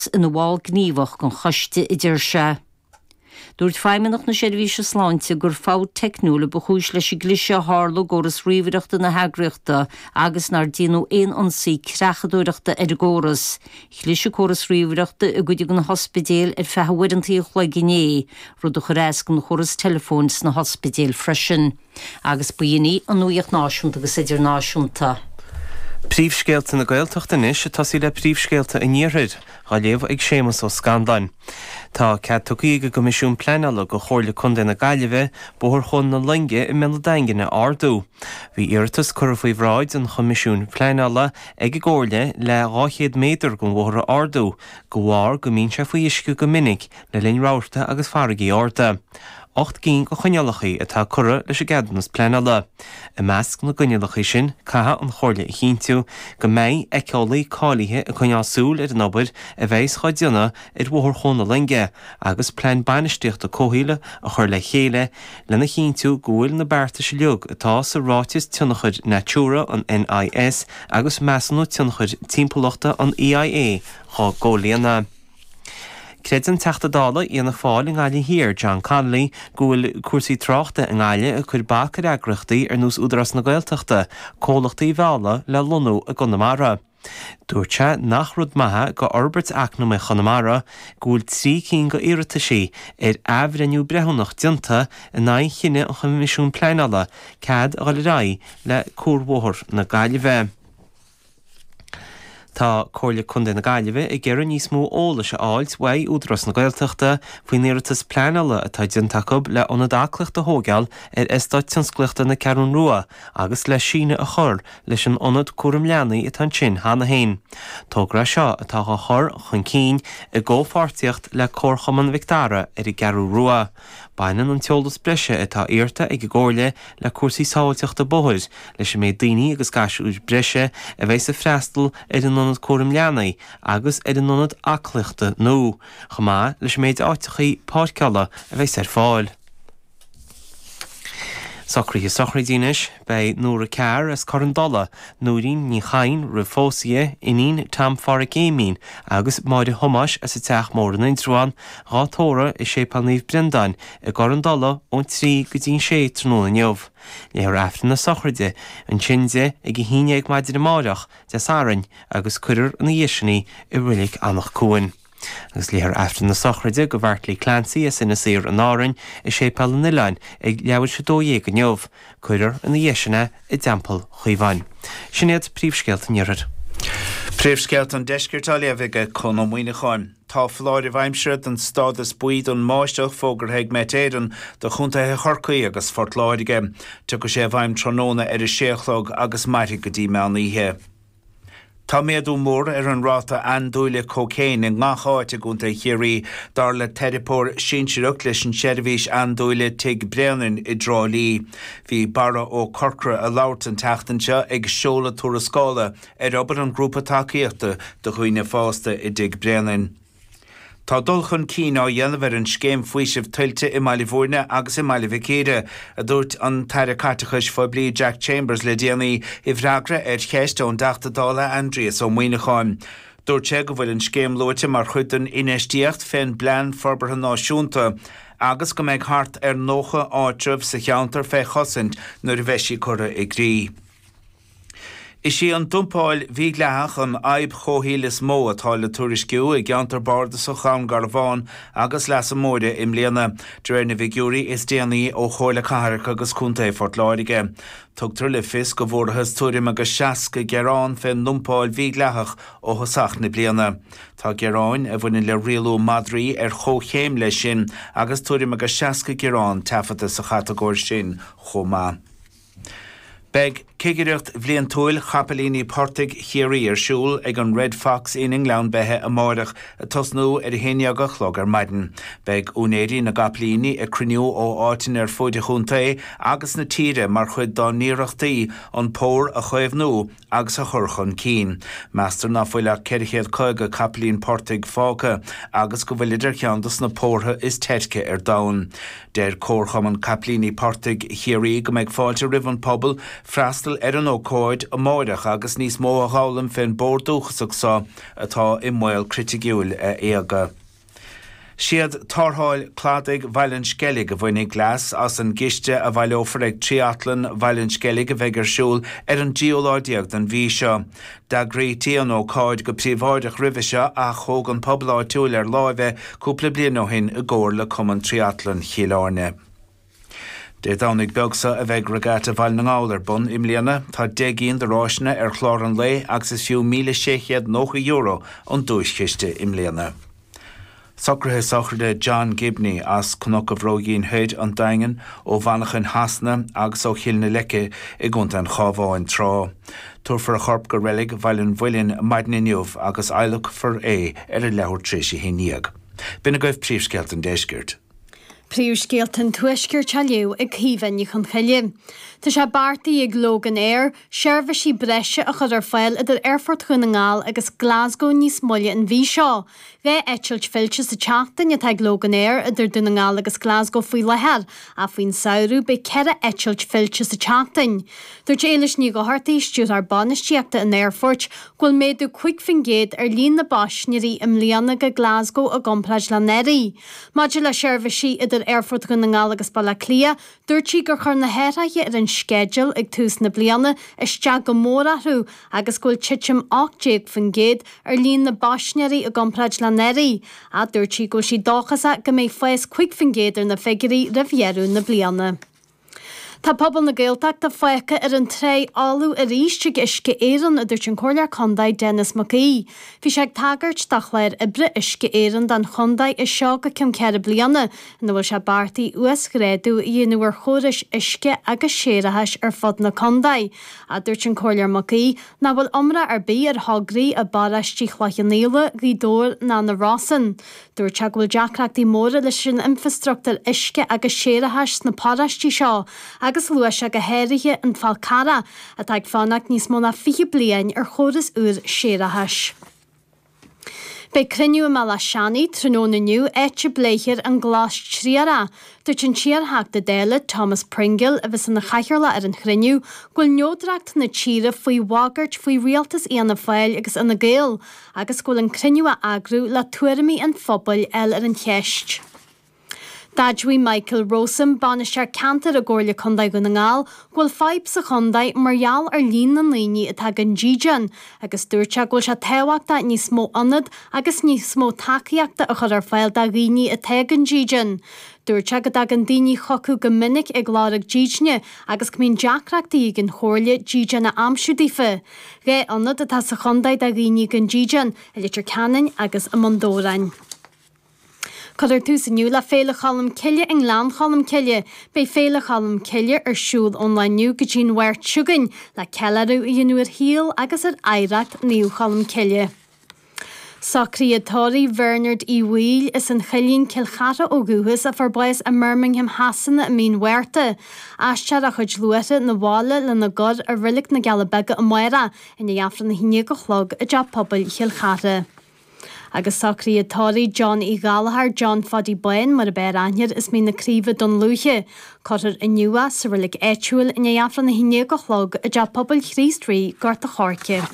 Scott ina bhall gníomhach den choiste, a deir sé. Dúirt Feidhmeannach na Seirbhíse Sláinte gur fabht teicniúil a ba chúis leis an gcliseadh a tharla i gcóras ríomhaireachta na heagraíochta agus nár déanadh aon ionsaí creachadóireachta ar an gcóras. Chlis córas ríomhaireachta i gcuid de na hospidéil ar feadh uaireanta an chloig inné, rud a chuir as don chóras teileafóin sna hospidéil freisin. Agus ba shin í an nuaíocht náisiúnta agus idirnáisiúnta. Príomhscéalta na Gaeltachta anois ag tosaí le Príomhscéalta an Iarthair, á léamh ag Séamas Ó Scanláin. Tá cead tugtha ag an gCoimisiún Pleanála go Chomhairle Contae na Gaillimhe Bóthar Chuan na Loinge i mBéal an Daingin a ardú. Bhí iarratas curtha faoi bhráid an Choimisiúin Pleanála ag an gComhairle le 200 méadar den bhóthar a ardú de bharr go mbíonn sé faoi uisce go minic le linn rabharta agus farraigí arda. Ocht gcinn de choinníollacha atá curtha leis an gceadúnas pleanála. I measc na gcoinníollacha sin, caithfidh an Chomhairle a chinntiú go mbeidh éiceolaí cáilithe ag coinneáil súil ar an obair a bheidhs dhá déanamh ar Bhóthar Chuan na Loinge agus plean bainistíochta comhshaoil a chur le chéile lena chinntiú go bhfuil na beartais uilig atá sa Ráiteas Tionchair Natura an NIS agus Measúnú Tionchair Timpeallachta an EIA á gcomhlíonadh. Creideann Teachta Dála Fhianna Fáil i nGaillimh Thiar, John Connolly, go bhfuil cúrsaí tráchta i nGaillimh ag cuir bac ar eagraíochtaí ar nós Údarás na Gaeltachta comhlachtaí a mhealladh le lonnú i gConamara. Dúirt sé nach rud maith go fhorbairt eacnamaíoch Chonamara go bhfuil trí cinn go iarrataisí ar athbhreithniú breithiúnach déanta in aghaidh chinneadh an Choimisiún Pleanála cead a dhul ar aghaidh le cuarbhóthar na Gaillimhe. Tá Comhairle Contae na Gaillimhe ag iarraidh níos mó eolais a fháilt uaidh Údarás na Gaeltachta faoin iarratas pleanála atá déanta acu le ionad aclaíochta a thóigeáil ar Eastát Tionsclaíochta na Ceathrún Rua agus le síneadh a chur leis an ionad cúram leanaí atá ansin cheana féin. Togra é seo atá á chur chun cinn i gcomhpháirtíocht le Comharchumann Mhic Dara ar an gCeathrú Rua. Baineann an t-eolas breise atá iarrta ag an gComhairle le cúrsaí sábháilteachta bóthair, leis an méid daoine agus gasúir breise a bheidhs ag freastal ar an ionad cúraim leanaí agus ar an ionad aclaíochta nua, chomh maith leis an méid áiteachaí páirceála a bheidhs ar fáil. Socruithe Sochraidí Anois. Beidh Nora Carr as Cor an Dola, Nóirín Ní Chadhain roimh phósadh di, iníon Tom Pháraic Éimín, agus Máire Thomáis as an Teach Mór in Indreabhán, dhá tórramh i Séipéal Naomh Breandáin i gCor an Dola ón trí go dtí an sé tráthnóna inniu. Léifear Aifreann na sochraide ansin di ag a haon dhéag maidin amáireach, Dé Sathairn, agus cuirfear ina dhiaidh sin í i Reilig Eanach Cuain. Agus léifear Aifreann na sochraide do Mheaití Clancy as Inis Oírr in Árainn i Séipéal an Oileáin ag leathuair tar éis 12 inniu, cuirfear ina dhiaidh sin é i dTeampall Chaomháin. Sin iad príomhscéalta an Iarthair. Príomhscéalta an Deiscirt á léamh ag Conn Ó Muíneacháin. Tá foláireamh aimsire den stádas buí don mbáisteach fógartha ag Met Éireann do chontaetha Chorcaí agus Phort Láirge. Tiocfaidh sé i bhfeidhm tráthnóna ar a sé a chlog agus mairfidh go dtí meán oíche. Tá méadú mór ar an ráta andúile cócaein i ngach áit i gContae Chiarraí, dar le teiripeoir sinsearach leis an tseirbhís andúile Tigh Bréanainn i dTrá Lí. Bhí Barra Ó Corcra a labhairt an tseachtain seo ag seoladh tuarascála ar obair an Ghrúpa Tacaíochta do Dhaoine Fásta i dTigh Bréanainn. Tá dul chun cinn á dhéanamh ar an Scéim Faoisimh Tuilte i mBaile Bhúirne agus i mBaile Mhic Íre, a dúirt an tAire Caiteachais Phoiblí Jack Chambers le déanaí i bhfreagra ar cheist ón dTeachta Dála Aindrias Ó Muíneacháin. Dúirt sé go bhfuil an scéim luaite mar chuid den infheistíocht fén bPlean Forbartha Náisiúnta agus go mbeidh thart ar 90 áitreabh sa cheantar fé chosaint nuair a bheidh sí curtha i gcrích. Is í an dumpáil mhídhleathach an fhadhb chomhshaoil is mó atá le tuairisciú i gCeantar Bardasach Dhún Garbhán agus Leasa Móire i mbliana, de réir na bhfigiúirí is déanaí ó Chomhairle Cathrach agus Contae Phort Láirge. Tugtar le fios go bhfuarathas tuairim agus 60 gearán fén ndumpáil mhídhleathach ó thosach na bliana. Tá gearáin a bhaineann le rialú madraí ar chomhchéim leis sin agus tuairim agus 60 gearán taifeadta sa chatagóir sin chomh maith. Beidh Cigireacht Bhliantúil Chapaillíní Portaigh Chiarraí ar siúl ag an Red Fox Inn i nGleann Beithe amáireach ag tosnú ar a haon dhéag a chlog ar maidin. Beidh úinéirí na gcapaillíní ag cruinniú ó áiteanna ar fuaid an chontae agus na tíre mar chuid dá n-iarrachtaí an pór a chaomhnú agus a chur chun cinn. Meastar ná fuil ach ceithre chéad caoga capaillín portaigh fágtha agus go bhfuilid ar cheann de sna pórtha is teirce ar domhan. Deir Comharchumann Capaillíní Portaigh Chiarraí go mbeidh fáilte roimh an pobal freastal ar an ócáid amáireach agus níos mó a dh'fhoghlaim fén bpór dúchasach so atá i mbaol criticiúil a éaga. Siad Tarrtháil Cladaigh Bhaile an Sceilg a bhainfidh leas as an gciste a bhaileofar ag Tríatlan Bhaile an Sceilg a bheidh ar siúl ar an dtríú lá déag den mhí seo. D'eagraítí an ócáid go príobháideach roimhe seo ach thóg an pobal áitiúil ar láimh é cúpla bliain ó shin i gcomhar le Cumann Tríatlan Chill Airne. Dé Domhnaigh beag so a bheidh Regatta Bhaile na nGall ar bun i mbliana. Tá deich gcinn de ráiseanna ar chlár an lae agus is fiú míle sé chéad nócha euro an duaischiste i mbliana. Socruithe sochraide John Gibney as Cnoc an Bhróigín Thoir, an Daingean, ó Mhanachain Shasana agus ó Chill na Leice i gContae an Chábháin tráth. Tabharfar a chorp go reilig Bhaile an Mhuilinn maidin inniu agus adhlacfar é ar a leathuair tar éis a haon dhéag. B'in agaibh príomhscéalta an deiscirt. Príomhscéalta an Tuaiscirt á léamh ag Caoimhe Ní Chonchoille. Tá sé beartaithe ag Loganair seirbhísí breise a chur ar fáil idir Aerfort Dhún na nGall agus Glasgow níos moille an mhí seo. Dhá eitilt fillte sa tseachtain atá ag Loganair idir Dún na nGall agus Glasgow faoi láthair ach faoin samhradh beidh ceithre eitilt fillte sa tseachtain. Dúirt Éilis Ní Dhochartaigh, Stiúrthóir Bainistíochta an Aerfoirt, go bhfuil méadú 5 faoin gcéad ar líon na bpaisnéirí i mbliana go Glasgow i gcomparáid le anuraidh. Maidir le seirbhísí idir Aerfort Dhún na nGall agus Baile Átha Cliath, dúirt sí gur chuir na hathraithe ar an sceideal ag tús na bliana isteach go mór orthu agus go bhfuil titim 18% ar líon na bpaisnéirí i gcomparáid le anuraidh ach dúirt sí go bhfuil sí dóchasach go mbeidh fás 5% ar na figiúirí roimh dheireadh na bliana. Tá pobal na Gaeltachta fágtha ar an trá fholamh aríst ag Uisce Éireann, a dúirt an Comhairleoir Contae Denis Mac Aoidh. Bhí sé ag tagairt do chlár oibre Uisce Éireann don chontae as seo go ceann ceithre bliana, ina bhfuil sé beartaithe uasghrádú a dhéanamh ar chórais uisce agus séarachais ar fud na contae. A dúirt an Comhairleoir Mac Aoidh nach bhfuil iomrá ar bith ar thograí i bparóistí Chloich Cheann Fhaola, Ghaoth Dobhair ná na Rosann. Dúirt sé go bhfuil deacrachtaí móra leis an infreastruchtúr uisce agus séarachais sna paróistí seo agus luaigh sé go háirithe an Fál Carrá atá ag fanacht níos mó ná 20 bliain ar chóras úr séarachais. Beidh cruinniú i mBaile Átha Seanaigh tráthnóna inniu áit a bpléifear an Glas Triarach. Dúirt an t-iarTheachta Dála Thomas Pringle, a bheas ina chathaoirleach ar an chruinniú, go bhfuil neodracht na tíre faoi bhagairt faoi rialtas Fhianna Fáil agus Fhine Gael, agus go bhfuil an cruinniú á eagrú le tuairimí an phobail a fháil ar an cheist. D'admhaigh Michael Rowsome, Bainisteoir Ceantair i gComhairle Contae Dhún na nGall, go bhfuil fadhb sa chontae mar gheall ar líon na ndaoine atá gan dídean agus dúirt sé go bhfuil sé tábhachtach níos mó ionad agus níos mó tacaíochta a chur ar fáil do dhaoine atá gan dídean. Dúirt sé go dtagann daoine chucu go minic ag lorg dídine agus go mbíonn deacrachtaí ag an Chomhairle dídean a aimsiú daofa. Dhá ionad atá sa chontae do dhaoine gan dídean, i Leitir Ceanainn agus i mBun Dobhráin. Cuirfear tús inniu le Féile Cholm Cille i nGleann Cholm Cille. Beidh Féile Cholm Cille ar siúl ón lá inniu go dtí'n Mháirt seo chugainn le ceiliúradh a dhéanamh ar shaol agus ar oidhreacht Naomh Cholm Cille. Socruithe tórraimh Bhernard Uí Bhaoill as an Choillín Cill Chartha ó dhúchas a fuair bás i mBirmingham Shasana i mí an Mhárta. Is tabharfar a chuid luaithre 'na bhaile lena gcur i Reilig na gCealla Beaga amárach i ndiaidh Aifreann a haon déag a chlog i dTeach Pobail Chill Chartha. Agus socruithe tórraimh John Uí Ghallchóir, John Phaidí Bháin mar ab fhearr aithne as Mín na Craoibhe, Dún Lúiche. Cuirfear inniu é sa reilig áitiúil i ndiaidh Aifreann a haon déag a chlog i dTeach Pobail Chríost Rí, Gort an Choirce.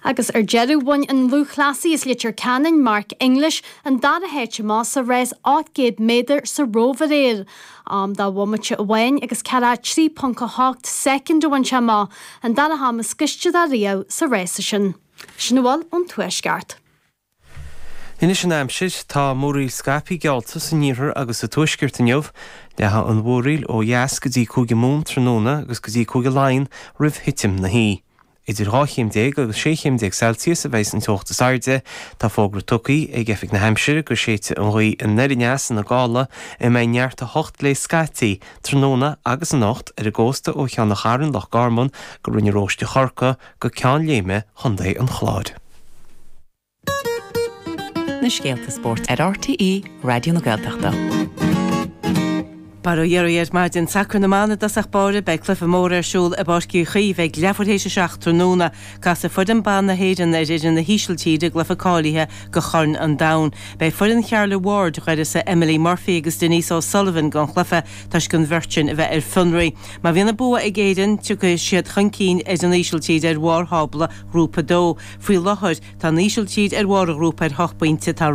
Agus ar deireadh bhain an lúthchleasaí as Leitir Ceanainn, Mark English, an dara háit amach sa rás 800 méadar sa Róimh aréir. Am de bhomaite amháin agus 43.8 soicind a bhain sé amach, an dara ham is gaiste dó riamh sa rás sin. Sin a bhfuil ón Tuaisceart. Anois an aimsir. Tá múraíl scaipthe geallta san iarthar agus sa tuaisceart inniu. Leathfaidh an mhúraíl ó dheas go dtí Cúige Mumhan tráthnóna agus go dtí Cúige Laighean roimh thitim na hoíche. Idir dhá chéim déag agus sé chéim déag Celsius a bheas an teocht is airde. Tá fógra tugtha ag Oifig na hAimsire go séidfidh an ghaoth anoir aneas ina gála a mbeidh neart 8 léi scaití tráthnóna agus anocht ar an gcósta ó Cheann an Chairn, Loch Garman go Rinn an Róistigh Chorcaí go Ceann Léime Chontae an Chláir. na scéalta spóirt ar RTÉ Raidió na Gaeltachta. Bail ó Dhia oraibh ar maidin. Sacar na mban i dtosach báire. Beidh cluiche mór ar siúl i bPáirc Uí Chaoimh ag leathuair théis a seacht tráthnóna. Casfaidh foireann ban na hÉireann ar fhoireann na hÍsiltíre i gcluiche cáilithe do Chorn an Domhain. Beidh foireann Charla Ward d'uireasa Emily Murphy agus Denise O'Sullivan don chluiche toisc an bheirt sin a bheith ar fionraí. Má bhíonn an bua ag Éirinn, tiocfaidh siad chun cinn ar an Ísiltír ar bharr thábla Ghrúpa 2. Faoi láthair, tá an Ísiltír ar bharr an ghrúpa ar hocht bpointe, tá.